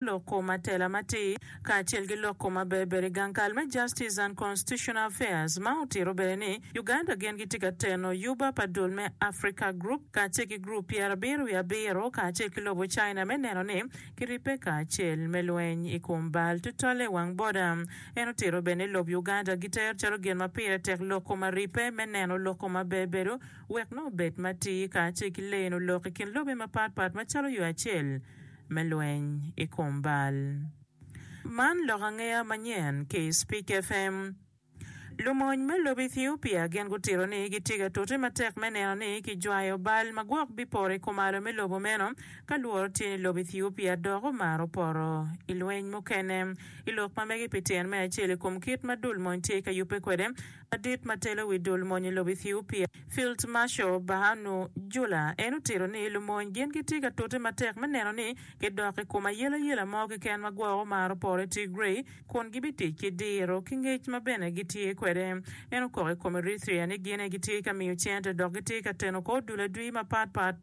lok kom atela matir, kacel ki lok kom aberberi gang kal me Justice and Constitutional Affairs ma otito bene ni Uganda gin gitye ka teno yuba pa dul me Africa Group kacel ki Group Pyerabiro wiye Abiro kacel ki lobo China me neno ni kiribbe kacel me lweny i kom bal tutwalle i wang boda. En otito bene ni lob Uganda gitero calo gin ma pire tek lok kom aribbe me neno lok kom aberberu wek nongo obed matir kacel ki leno lok i kin lobe mapatpat macalo yo acel me lweny i kom bal. Man lok angeya manyen ki i Speak FM. Lumony me lobo Ethiopia gin gutito ni gitye ka tute matek me neno ni kijwayo bal ma gwok bipoto i kumalo me lobo meno ka lworo tye ni lobo Ethiopia dok omaro poto i lweny mukene i lok ma mege pi tyen me acel i kom kit ma dul mony tye ka yubbe kwede Ladit ma telo wi dul mony i lobo Ethiopia, Field Marshal Birhanu Jula, en otito ni lumony gin gitye ka tute matek me neno ni gidok i kom ayelayela mo keken ma gwoko mar oporo i Tigray kun gibitic ki diro ki ngec ma bene gitye kwede. En okok i kom Eritrea ni gin aye gitye ka miyo cente dok gitye ka teno kor dul adwi mapatpat.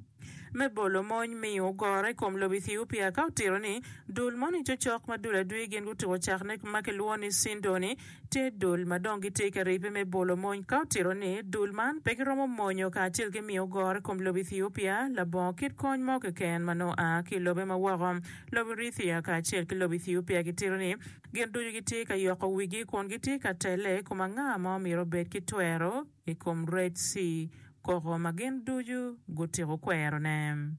me bolo mony miyo ogoro i kom lobo Ethiopia ka otito ni, Dul moni cocok ma dul adwi gin gutuko cakne ma kilwongo ni Sindoni, tye dul ma dong gitye ka ribbe me bolo mony. Ka otito ni, Dul man pe giromo monyo kacel ki miyo ogoro i kom lobo Ethiopia labongo kit kony mo keken ma nongo a ki i lobe ma woko, lobo Erithia kacel ki lobo Ethiopia gitito ni gin ducu gitye ka yoko wigi kun gitye ka telle i kom anga ma omyero obed ki twero. i kom Red Sea koko ma gin ducu gutiko kwerone.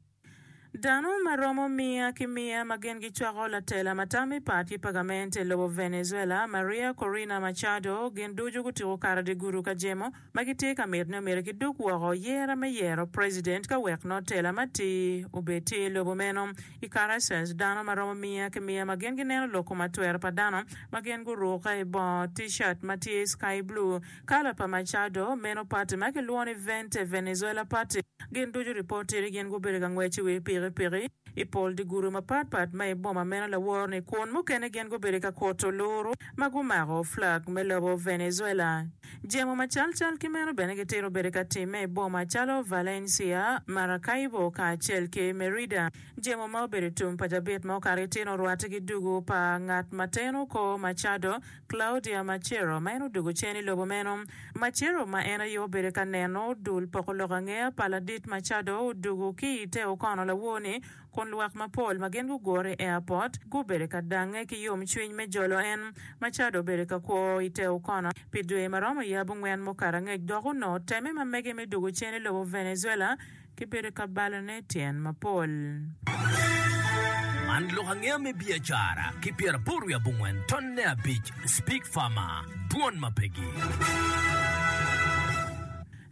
Dano ma romo miya ki miya ma gin gicwako latela ma tam i pat ki pagament i lobo Venezuela, Maria Corina Machado, gin ducu gutiko kato dye gudu ka jemo ma gitye ka mito ni omyero kidug woko yera me yero president ka wek nongo tela matir obed tye i lobo meno. I Caracas, dano ma romo miya ki miya ma gin gineno loko matwero pa dano ma gin gurukke i bongo T-shirt ma tye sky blue Kala pa Machado, meno pati ma kilwongo ni Vente Venezuela Party, gin ducu ripot tye ni gin gubedo ka ngwec i wi pikipiki i pol dye gudo mapat pat ma i boma meno laworo-ni kun mukene gin gubedo ka kuto luru ma gumako flag me lobo Venezuela. Jemo macalcal ki meno bene gitito bedo ka timme i boma calo Valencia, Maracaibo kacel ki Merida. Jemo ma obedo tum pa cabit ma okato ki tyene orwatte ki dugu pa ngat ma teno kor Machado, Claudia Macero, ma en odwogo cen i lobo meno. Macero, ma en aye obedo ka neno dul poko lok angeya pa Ladit Machado, odwogo ki i te okono lawor-ni, kun lwak mapol ma gin gugure i airport gubedo ka dangnge ki yomcwiny me jolo en. Machado obedo ka kwo i te okono pi dwe ma romo yabungwen mukato angec dok onongo temme ma mege me dwogo cen i lobo Venezuela Kibedo ka balone tyen mapol. Man lok angeya me biacara ki pyeraboro wiye abongwen tonne abic Speak Farmer, Dwon ma pegi.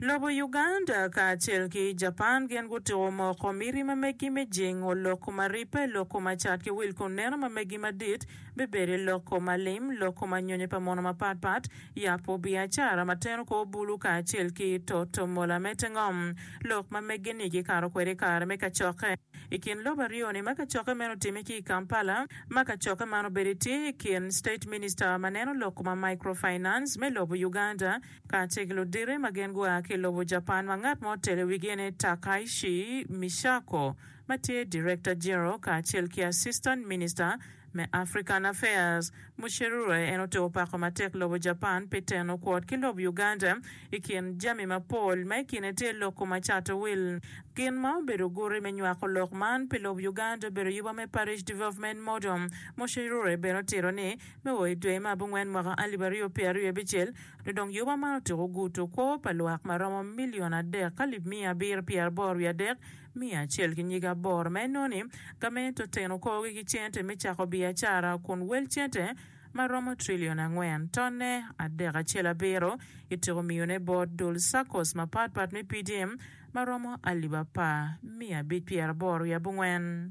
Lobo Uganda kacel ki Japan gin gutuko moko miti ma megi me jingo lok kuma ribbe, lok kuma cat ki wil kun neno ma megi madit bibedo i lok kuma lim, lok kuma nyonyo pa mono mapatpat, Yabo biacara ma teno kor bulu kacel ki toto mola me te ngom lok ma meggi-ni gikato kwede i kare me kacokke. I kin lobo aryo-ni ma kacokke meno otimme ki i Kampala, ma kacokke man obedo tye i kin State Minister ma neno lok ma Microfinance me lobo Uganda kacel ki ludite ma gin gua ki lobo Japan ma ngat ma otelo i wigi ni Takaishi Misako ma tye Director General kacel ki Assistant Minister Me African Affairs, Mucheruroe en otiko pako matek lobo Japan pi teno kwot ki lob Uganda i kin jami mapol, ma i kine tye loko ma cato wil. Gin ma obedo guti me nywako lok man pi lob Uganda obedo yuba me Parish Development Model. Mucheruroe bene otito ni, me o i dwe me abongwen mwaka alip aryo pye aryo abicel, nyo dong yuba man otyeko guto kwo pa lwak ma romo milion adek ka lib miya abiro pyer boro wiye adek, Miya acel ki nyige aboro ma inoni, ka ma ento teno korogi ki cente me cako biacara kun wel cente ma romo trillion angwen, tonne adek acel abiro, ityeko miyone bot dul SACCOs mapatpat me PDM ma romo alip apar, miya abic pyeraboro wiye abongwen.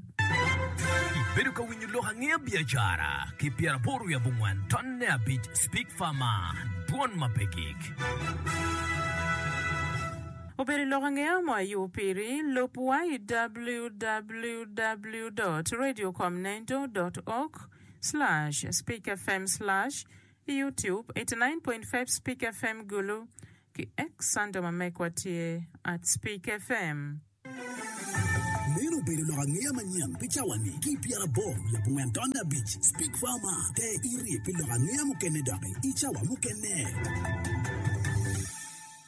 Ibedo ka winyo lok angeya biacara ki pyeraboro wiye abongwen, tonne abic Speak Farmer, dwon ma pe gik. Obedo lok ange mo ayubo piri. Lub wa i www dot radio com nendo dot org slash speak fm slash i youtube eighty nine point five speak fm gulu ki X under ma mekwa tye at speak fm. Meno obedo lok angeya manyen pi cawa ni ki pyera aboro lub ongwen tonde abic speak fm te irye pi lok angeya mukene doki i cawa mukene.